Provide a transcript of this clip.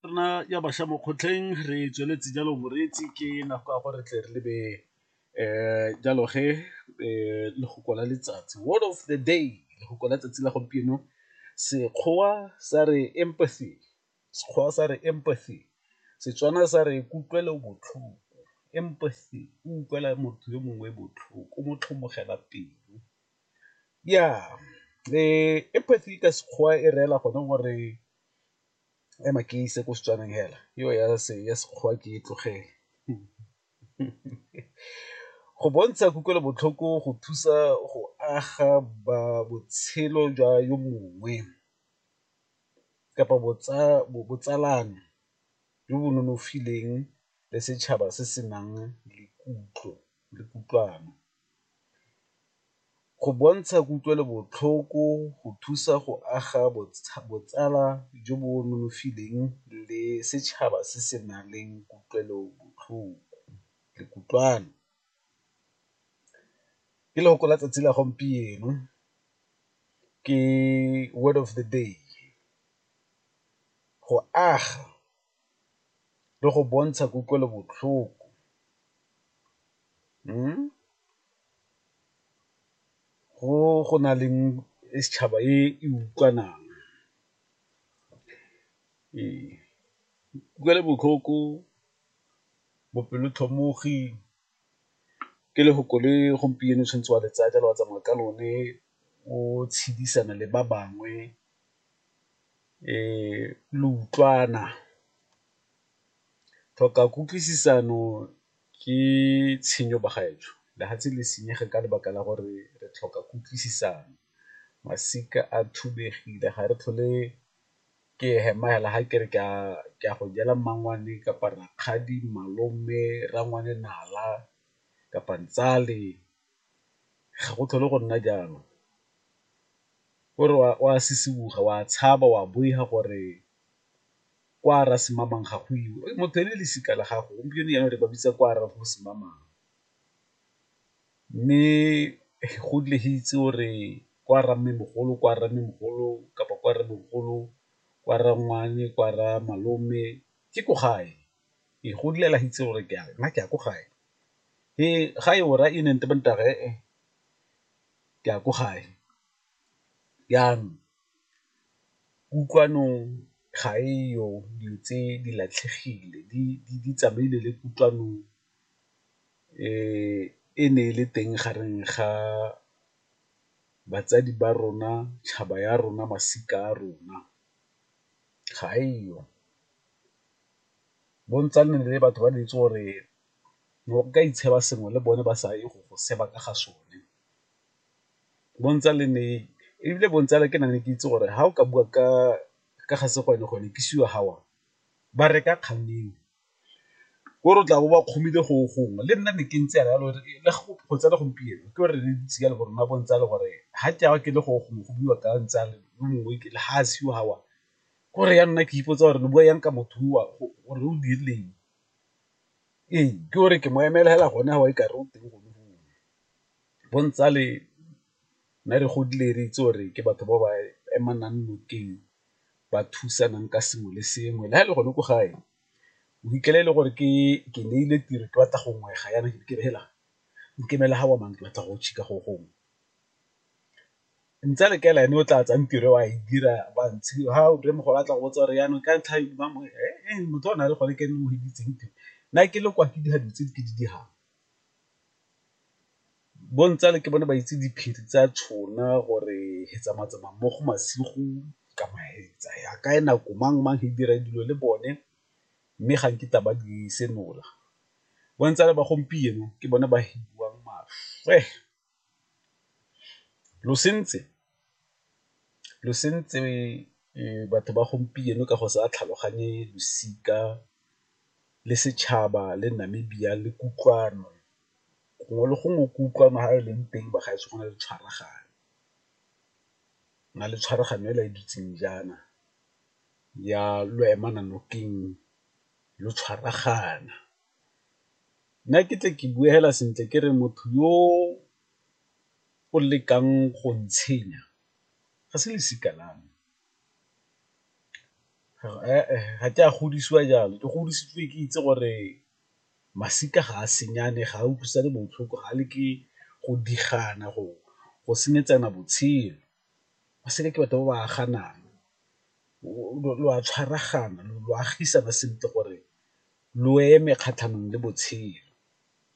rona ya bašwa mo kgotleng re tsweletse jalo moreetsi ke nako ya gore tle re lebe um jalo ge um lefoko la letsatsi word of the day lefoko la tsatsi la gompieno sekgowa sa re empathy sekgowa sa re empathy setswana sa re kutlwelo botlhoko empathy o utlwela motho yo mongwe botlhoko o mo tlhomogela pelo Ya empathy ka Sekgowa e reela gone gore ema ke ise ko Setswaneng hela eo ya Sekgowa ke e tlogele go bontsha kutlwelobotlhoko go thusa go aga ba botshelo jwa yo mongwe kapa botsalano jo bo nonofileng le setšhaba se se nang le kutlo le kutlwano. Go bontsha kutlwelobotlhoko go thusa go aga botsala jo bo nonofileng le setšhaba se se nang le kutlwelobotlhoko le kutlwano. Ke lefoko la tsatsi la gompieno ke word of the day, go aga. le go bontsha kutlwelobotlhoko go na leng e setšhaba e e utlwanang. Ee, kutlwelobotlhoko, bopelotlhomogi ke lefoko le gompieno o tshwanetse wa le tsaya jalo wa tsamaya ka lone o tshedisana le ba bangwe. lo utlwana, tlhoka kutlwisisano ke tshenyo bagaetsho, lefatshe le senyega ka lebaka la gore re tlhoka kutlwisisano, masika a thubegile ga re tlhole ke hema hela ga ke re ke a go jela mmangwane kapa rakgadi, malome, rangwane nala kapa ntsale. ga go tlhole go nna jalo, o re o a sisiboga, o a tshaba, o a boifa gore kwa Rasimamang ga go iwe, motho e ne e le losika la gago, gompieno jaana re ba bitsa kwa Rasimamang. Mme go dule go itse o re kwa Rammemogolo, kwa Rammemogolo kapa kwa Rremogolo, kwa Rangwane, kwa Ramalome ke ko gae. Ee, go dula la itse gore ke a re nna ke ya ko gae, ee ga e ora e neng ke ya ko gae, jaanong kutlwanong ga e yo dilo tse di latlhegile di tsamaile le kutlwano e ne e le teng gareng ga batsadi ba rona, tšhaba ya rona, masika a rona ga e yo. Bontsi ne e le batho ba ne ba itse gore ne o ka itsheba sengwe le bone ba sa ye go go seba ka ga sone. Bontsi le ne, ebile Bontsi ke ne ke itse gore ga o ka bua ka ga Sekgwanekgwane ke sure ga o a ba reka kgang eo. Ko re o tla bo ba kgomile go gongwe le nna ne ke ntse jalo le go tse le gompieno ke gore re ntse jalo gore rona Bontsi gore ga ke a ke le go gongwe go buiwa ka Ntsi le mongwe ga a seo ga o a. Ke gore ya nna ke ipotsa gore re bua jang ka motho o a gore o dirileng, ee ke gore ke mo emela fela gone fa o e kare o teng gone foo. Bo ntsale ne re godile re itse gore ke batho ba ba emanang nokeng ba thusanang ka sengwe le sengwe le fa e le gone ko gae o fitlhela e le gore ke ke neile tiro ke batla go ngwega jaana ke re heela nkemele ga o amang ke batla go go gongwe. Ntse a re kaela ene o tla tsaya tiro a e dira ba ntshe ha o re mogolo a tla go botsa gore yanong ka ntlha ba mo motho o na le gone ke ene o hiditseng tiro nna ke le kwa ke dira dilo tse ke di dirang. Bo ntsale ke bone ba itse diphiri tsa tšhona gore he tsamaya tsamaya mo go masigo kama he tsaya kae nako mang mang he dira dilo le bone, mme ga nkitla ba di senola. Bo ntsale ba gompieno ke bone ba hidiwang maswe. Lo sentse batho ba gompieno ka go sa tlhaloganye losika le setšhaba le Namibia le kutlwano, gongwe le gongwe kutlwano ha e leng teng ba gaetsho go na le tshwaragano, go na le tshwaragano hela e dutseng jaana ya lo emana nokeng lo tshwaragana. Nna ke tle ke bue fela sentle ke re motho yo o lekang go ntshenya ga se losika la me, ga ke a godisiwa jalo ke godisitswe ke itse gore masika ga a senyane, ga a utlwisane botlhoko, ga a leke go di gana go senyetsana botshelo. ba seke ke batho ba ba aganang lo a tshwaragana lo agisana sentle gore lo eme kgatlhanong le botshelo.